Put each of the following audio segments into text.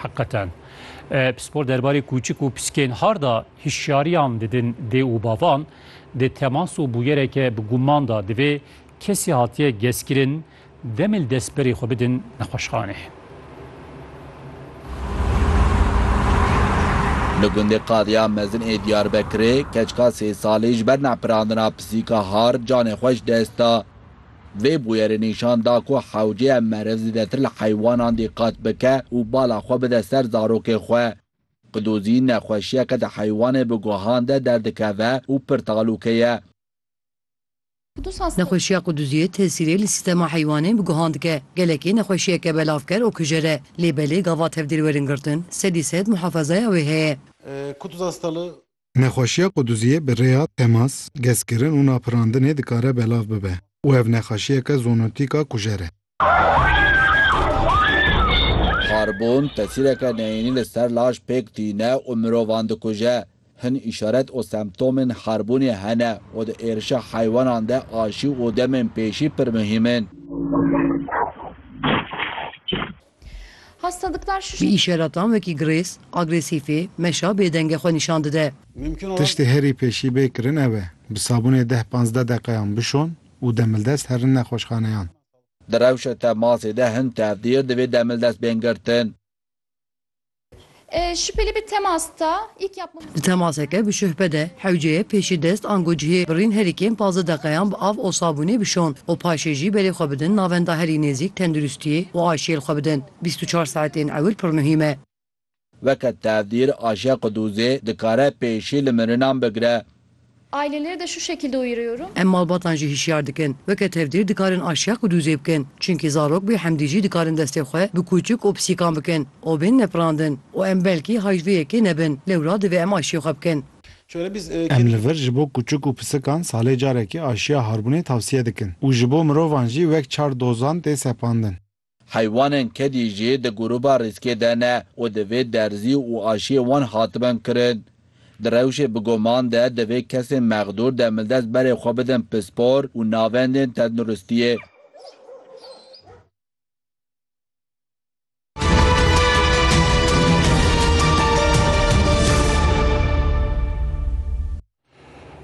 Heqeten. Pispor derbarê kûçik û piskên harda hişyariyan didin dê û bavan, di temas û bûyereke bi guman da divê kesî hatiye gezkirin demê li destberê xwe bidin nexweşxanê. Li gundê Qadiya Mezin ê Diyarbekirê, keçika sê salî ji ber nepirandina pisîka hard canê xwe ji dest da. Vê bûyerê nîşan da ku hewceye meriv zêdetir li heywanan dîqat bike û bala xwe bide ser zarokê xwe. Qidozî nexweşiyeke di heywanê bi guhan de derdikeve û pir talûke ye. Nexweşiya qidoziyê tesîrê li sîstema heywanê bi guhan dike. Gelekî nexweşiyeke belavker û kujer e. Lê belê gava tevdêr werin girtin, sedî sed muhafezaya wê heye. Qidozhastalığı Nexweşiya quduziyê bi rêya temas, gezkirin û napirandinê dikare belav bibe û ev nexaşiyeke zoonotîk a kujer e. Xarbûn tesîreke neyînî li ser laş pêk tîne û mirovan dikuje. Hin îşaret û semtomên xarbûnê hene û di êrişa heywanan de aşî û demên pêşî pir muhîm in. Bi îşaratan wekî girês, agresîfî, meşa bêdengê xwe nîşan dide. Tiştê herî pêşî bê kirin ew e, bi sabûnê deh panzdeh deqeyan bişon û demildest herin nexweşxaneyan. Di rewşa temasê de hin tevdiyo divê demildest bên girtin. Şüpheli bi temas da ilk yapmamız. Di temaseke bişuhbe de hewceye pêşî dest ango cihê birîn herî kêm pazdeh deqeyan bi av û sabûnê bişon û paşê jî berê xwe bidin navenda herî nêzîk tenduristiyê û aşiyêl xwe bidin bîst û çar saetên ewil pir muhîm e. Weke tevdîr, aşiya qudûzê dikare pêşî li mirinan bigire. Aileleri de şu şekilde uyarıyorum. Em malbatan jî hişyar dikin. Weke tevdîr dikarin aşiya ku dûzê bikin. Çimkî zarok bê hemdî jî dikarin destê xwe bi kûçik û pisîkan bikin û bên nepirandin û em belkî hay ji vê yekê nebin. Lewra divê em aşiyê xwe bikin. Em li vir ji bo kûçik û pisikan salê carekê aşiya harbûnê tavsiye dikin û ji bo mirovan jî wek çar dozan tê sepandin. Heywanên kedî jî di grûba rîskê de ne û divê derzî û aşiyê wan hatibin kirin. Di rewşê bi guman de divê kesên mexdûr demildest berê xwe bidin pispor û navendên tenduristiyê.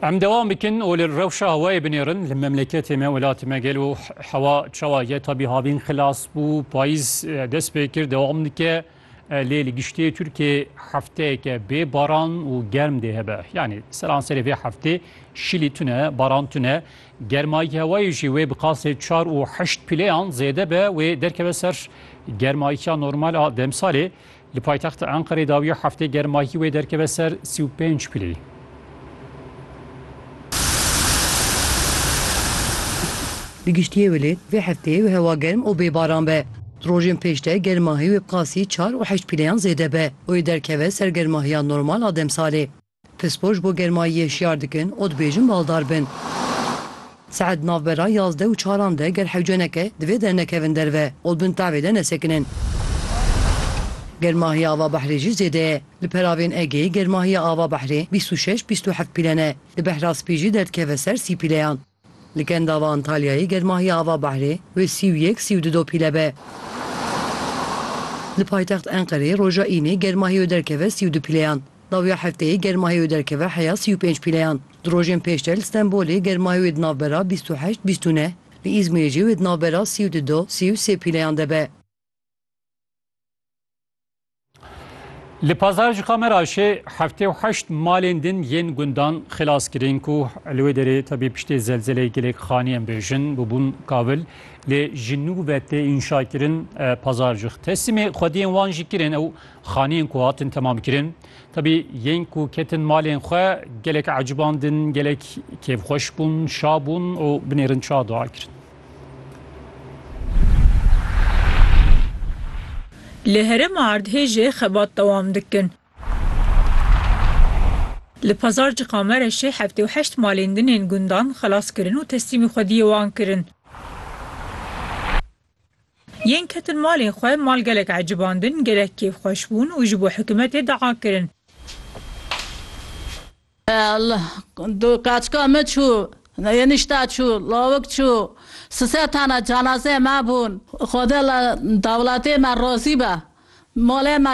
Em dewam bikin û li rewşa hewayê binêrin li memleketê me welatê me gel û hewa çawa ye tabî havîn xilas bû payîz dest pê kir dewam dike lê li giştê Tirkiyê hefteyeke bê baran û germ dê hebe yanî seranserê vê heftê şilî tune baran tune germayî hewayê jî wê bi qasê çar û heşt pîleyan zêde be wê derkeve ser germayîya normal a demsalê Li paytexta Enqerê dawiya heftê germahî wê derkeve ser sî û pênc pilî. Di giştiyê wele vê hefteyê wê hewa germ û bê baran be. Di rojên pêş de germahî wê bi qasî çar û heşt pilîyan zêde be û ê derkeve ser germahiya normal a demsalê. Pispor ji bo germayiyê şiyar dikin û dibêjin baldar bin. Saet di navbera yazdeh û çaran de ger hewce neke divê dernekevin derve û li bin tavê de nesekinin. Germahiya ava behrê jî zêde ye. Li peravên Egeyê germahiya ava behrê bîst û şeş bîst û heft pîle ne. Di behra spî jî derdikeve ser sî pîleyan. Li Kendava Antalyayê germahiya ava behrê wê sî û yek, sî û du dopîle be. Li paytext Enqereyê roja Înê germahî wê derkeve sî û du pîleyan. Dawiya hefteyê germahê wê derkeve heya sî û pênc pîleyan. Di rojên pêşter li Stenbolê germahê wê di navbera bîst û heşt, bîst û neh, li Îzmîrê jî wê di navbera sî û du, sî û sê pîleyan de be. Li Pazarcika me re jî heftê û heşt malên din yên gundan xilas kirin ku li wê derê tevî piştê zelzeleyê gelek xanî em bêjin bûbûn kavil lê ji nû ve tê înşakirin pazarcix. Teslimê xwediyên wan jî kirin ew xaniyên ku hatin temamkirin. Tevî yên ku ketin malên xwe gelek ecibandin, gelek kêfxweş bûn, şabûn û binêrin çawa dua kirin. Li herêma erdhêjê xebat dewam dikin. Li pazarcika Mereşê heftê û heşt malên din ên gundan xelas kirin û teslîmî xwediyê wan kirin. Yên ketin malên xwe mal gelek ecibandin, gelek kêfxweş bûn û ji bo hikûmetê dua kirin. Du kaçka min çû, enişte çû, lawik çû, si sed tane cenazeyê me bûn. Xwedê li dewletê me razî be. Malê me.